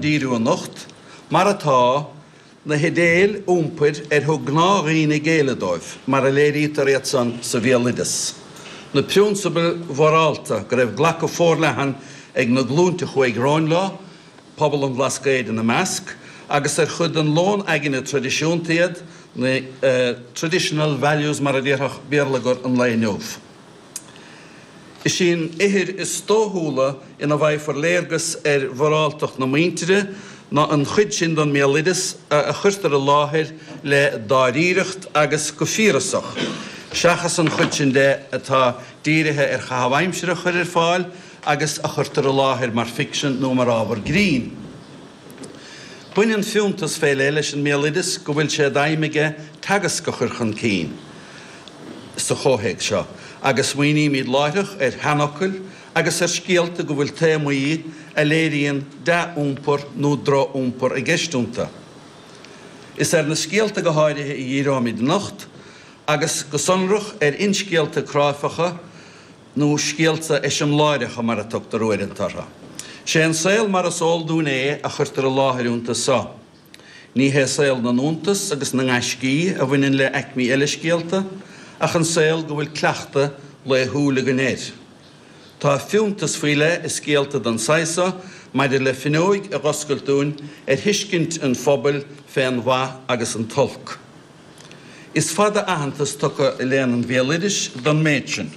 díriú anocht, mar atá, na hidéil iompair ar thug gnáthdhaoine géilleadh dóibh, mar a léirítear iad san sa bhéaloideas, na priúnsabail mhorálta go raibh glacadh forleathan ag na glúinte a chuaigh romhainn leo, pobal an Bhlascaoid ina measc, agus ar chuid den lón aigne traidisiúnta iad, na traditional values mar a déarfadh béarlagair an lae inniu. Is í an ithir is dóchúla ina bhfaighfear léargas ar mhoráltacht na muintire ná an chuid sin den mbéaloideas a chuirtear i láthair le dáiríreacht agus go fíorasach, seachas an chuid sin de atá dírithe ar chaitheamh aimsire a chur ar fáil agus a chuirtear i láthair mar ficsean nó mar ábhar grinn. Baineann fiúntas faoi leith leis an mbéaloideas go bhfuil sé d'aidhm aige teagasc a chur chun cinn. sa chomhthéacs seo agus smaoinímid láithreach ar sheanfhocail agus ar scéalta go bhfuil téamaí a léiríonn dea-iompar nó droch-iompar i gceist iontu. Is ar na scéalta go háirithe a dhíreoimid anocht agus, go sonrach, ar fhinscéalta cráifeacha nó scéalta eiseamláireacha mar a tugtar uaireanta orthu. Sé an saol mar is eol dúinn é a chuirtear i láthair iontu so. Ní hé saol na n-iontas agus na ngaiscí a bhaineann le aicmí eile scéalta, ach an saol go bhfuil cleachtadh laethúil againn air. Tá fiúntas faoi leith i scéalta den saghas seo maidir le finneóig a dh'oscailt dúinn ar thuiscint an phobail fén mhaith agus an t-olc. Is fada aitheantas tugtha i léann an bhéaloidis don méid sin.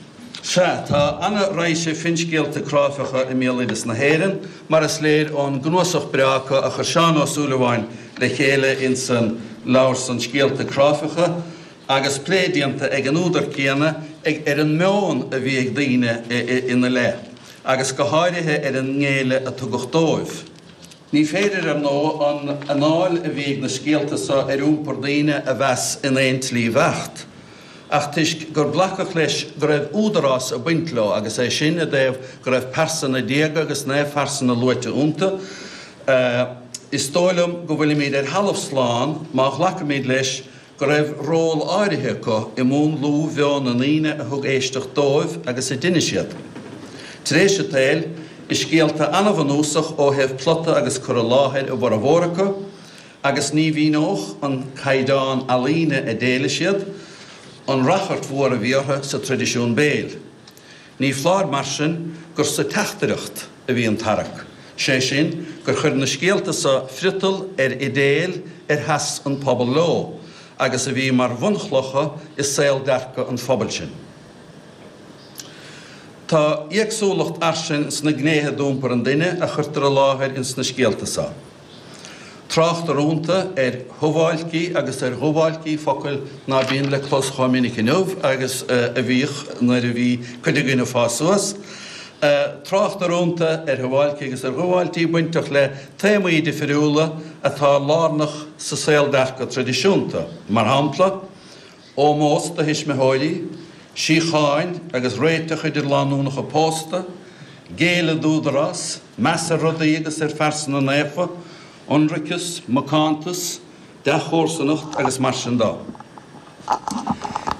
Sea, tá an-raidhse finscéalta cráifeacha i mbéaloideas na hÉireann, mar is léir ón gcnuasach breá acu a chuir Seán Ó Súilleabháin le chéile insan leabhar san Scéalta Cráifeacha, agus plé déanta ag an údar céanna ar an meon a bhí ag daoine ina leith, agus go háirithe ar an ngéilleadh a tugadh dóibh. Ní féidir, ar ndóigh, an anáil a bhí ag na scéalta so ar iompar daoine a mheas in aon tslí bheacht, ach toisc gur glacadh leis go raibh údarás ag baint leo, agus é sin i dtaobh go raibh pearsana diaga agus naomhphearsana luaite iontu, is dóigh liom go bhfuilimid ar thalamh slán má ghlacaimid leis go raibh ról áirithe acu i múnlú mheon na ndaoine a thug éisteacht dóibh agus a d'inis iad. Tar éis an tsaoil, is scéalta an-bhunúsach ó thaobh plota agus cur i láthair a bhformhór acu, agus ní mhíneodh an caighdeán ealaíne a d'éiligh siad, an rachairt mhór a bhí orthu sa traidisiún béil. Ní foláir mar sin gur sa teachtaireacht a bhí an tarrac, sé sin gur chuir na scéalta so friotal ar idéil ar sheas an pobal leo agus a bhí mar bhunchlocha i saoldearcadh an phobail sin. Tá éagsúlacht fhairsing sna gnéithe d'iompar an duine a chuirtear i láthair ins na scéalta so. Tráchtar ionta ar shuáilcí agus ar dhuáilcí focail ná bíonn le clos chomh minic inniu agus a bhíodh nuair a bhí cuid againn ag fás suas. Tráchtar ionta ar shuáilcí agus ar dhuáilcí bainteach le téamaí difriúla atá lárnach sa saoldearcadh traidisiúnta, mar shampla, Ómós do thuismitheoirí, síocháin agus réiteach idir lánúnacha pósta, géilleadh d'údarás, meas ar rudaí agus ar phearsana naofa, ionraiceas, macántas, dea-chomharsanacht agus mar sin de.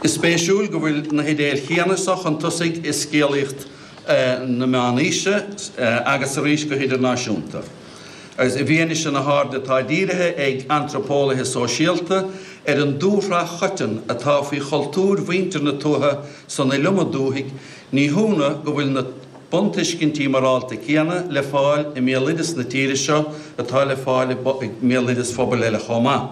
Is spéisiúil go bhfuil na hidéil chéanna so chun tosaigh i scéalaíocht na meánaoise agus arís go hidirnáisiúnta. agus i bhfianaise na hairde atá dírithe ag antraipeolaithe sóisialta ar an dúshraith choiteann atá faoi chultúir mhuintir na tuaithe san iliomad dúthaigh, ní hionadh go bhfuil na buntuiscintí morálta céanna le fáil i mbéaloideas na tíre seo atá le fáil i mbéaloideas phobal eile chomh maith.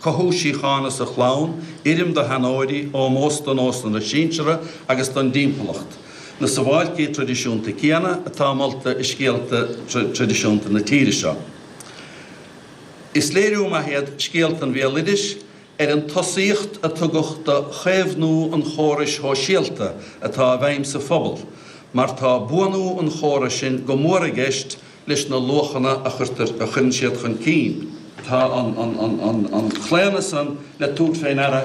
Cothú síochána sa chlann, uirrim do sheanóirí, ómós do nósanna na sinsear agus don dtimpeallacht, na suáilcí traidisiúnta céanna atá molta i scéalta traidisiúnta na tíre seo. Is léiriú maith iad scéalta an bhéaloidis ar an tosaíocht a tugadh do chaomhnú an chórais shóisialta atá i bhfeidhm sa phobal mar tá buanú an chórais sin go mór i gceist leis na luachanna a chuirtear, a chuireann siad chun cinn. Tá an claonadh san le tabhairt fé ndeara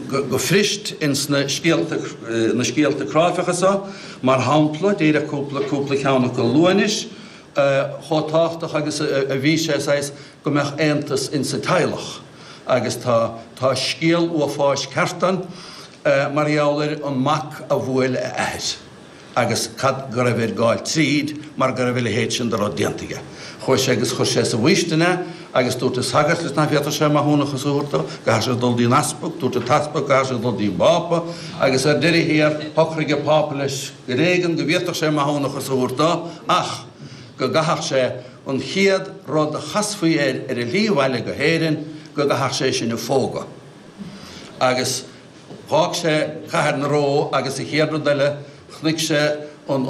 go puirist ins na scéalta cráifeacha so, mar shampla, díreach cúpla ceann acu a lua anois, chomh tábhachtach agus a bhí sé, saghas, go mbeadh aontas insa teaghlach. Agus tá scéal uafáis ceart ann mar gheall ar an mac a bhuail a athair. agus cad go raibh air gabháil tríd mar go raibh a leithéid sin de rud déanta aige. Chuaidh sé agus chuir sé sa bhfaoistin é agus dúirt an sagart leis nach bhféadfadh sé maithiúnachas a thabhairt dó, go gcaithfeadh sé dul dtí an easpag, dúirt an t-easpag go gcaithfeadh sé dul dtí an bPápa agus ar deireadh thiar shocraigh an Pápa leis ar éigean go bhféadfadh sé maithiúnachas a thabhairt dó ach go gcaithfeadh sé an chéad rud a chasfaí air ar a shlí abhaile go hÉirinn, go gcaithfeadh sé é sin a phógadh. Dh'fhág sé Cathair na Rómha agus an chéad rud eile chnuic sé an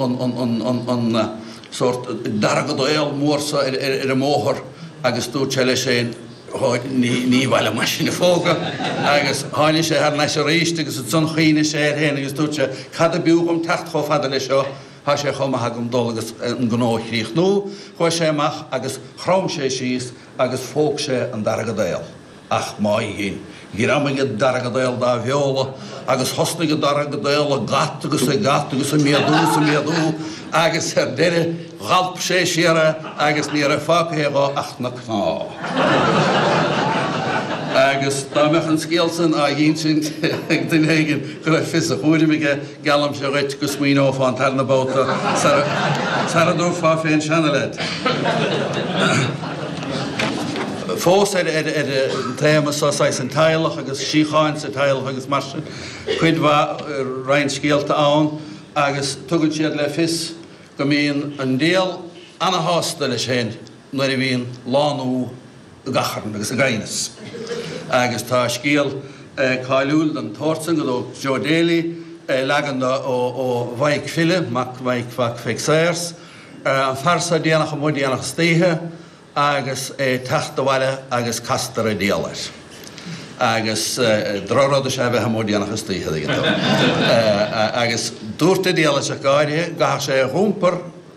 sórt deargadaol mór so ar an mbóthar agus dúirt sé leis féin Ó, ní b'áil liom é sin a phógadh. Agus tháinigh sé thar n-ais aríst agus ansan chuimhnigh sé air féin agus dúirt sé Cad ab fhiú dhom teacht chomh fada leis seo, thá sé chomh maith agam dul agus an gnó a chríochnú. Chuaidh sé amach agus chrom sé síos agus phóg sé an deargadaol. Ach má dhein, ghreamaigh an deargadaol dá bheola agus thosnaigh an deargadaol ag at agus ag at agus ag méadú is ag méadú agus ar deireadh dh'alp sé siar é agus ní raibh fágtha dhe ach na cnámha. Agus dá mbeadh an scéal san á dh'ínsint ag duine éigin go raibh fios a chúraim aige, Geallaimse dhuit go smaoineofá an tarna babhta sara dtabharfá fén seanleaid fós ar an téama so, saghas an teaghlach agus síocháin sa teaghlach agus mar sin. Cuid mhaith, roinnt scéalta ann agus tugann siad le fios go mbíonn an diabhal ana-shásta leis fhéin nuair a bhíonn lánú ag achrann agus ag aighneas. Agus tá scéal cáiliúil den tsórt san go dtóg Joe Daly leagan de ó Mhaidhc File, mac, mac Pheig Sayers, an fear so déanach amuigh déanach istoíche agus é ag teacht abhaile agus castar an diabhal air. Agus drochrud is ea a bheith amuigh déanach istoíche, tuigeann tú. Agus dúirt an diabhal leis ach go háirithe go gcaithfeadh sé é a dh'iompar,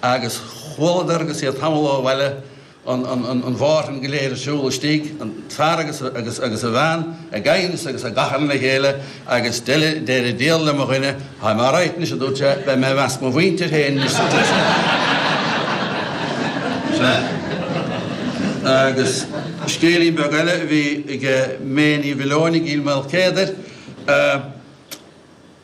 Agus chualadar agus iad tamall ó bhaile an mhárthain go léir ar siúl istigh, an fear agus agus a bhean ag aighneas agus ag achrann le chéile agus deir an diabhal le mo dhuine, Táim alright anois a dúirt sé, beidh mé i measc mo mhuintir féin anois sa tigh sin. Agus scéilín beag eile a bhí ag May Ní Mhaoileoin i gCill Maoilchéadair.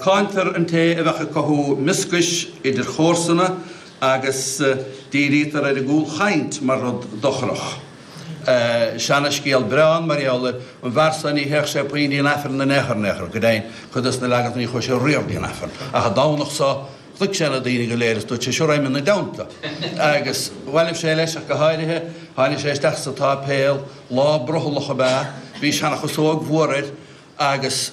Cáintear an té a bheadh ag cothú mioscais idir chomharsana agus dírítear ar an gcúlchaint mar rud dochrach. Seanascéal breá an Mhairnéalaigh, an fear so ná téadh sé puinn dtí'n Aifreann in aon chor in aon chor, go deimhin, cuid dos na leaganacha ní chuaidh sé riamh dtí'n Aifreann ach an Domhnach so, chnuic sé na daoine go léir is dúirt sé, Sea, raghaidh mé ina dteannta. Agus bhailibh sé leis ach go háirithe, tháinig sé isteach sa tsáipéal, lá brothallach ab ea, bhí seanachasóg mhór air agus.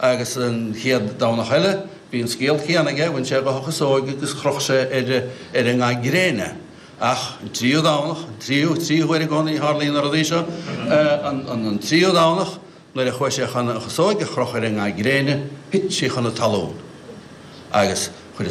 Agus an chéad Domhnach eile bhí an scéal céanna aige, bhain sé dhe a chasóg agus chroch sé ar an nga gréine. Ach an tríú Domhnach, an tríú, trí huair i gcónaí a tharlaíonn na rudaí seo, an tríú Domhnach nuair a chuaigh sé chun a chasóg a chrochadh ar an nga gréine, thit sí chun an talún agus chuir a.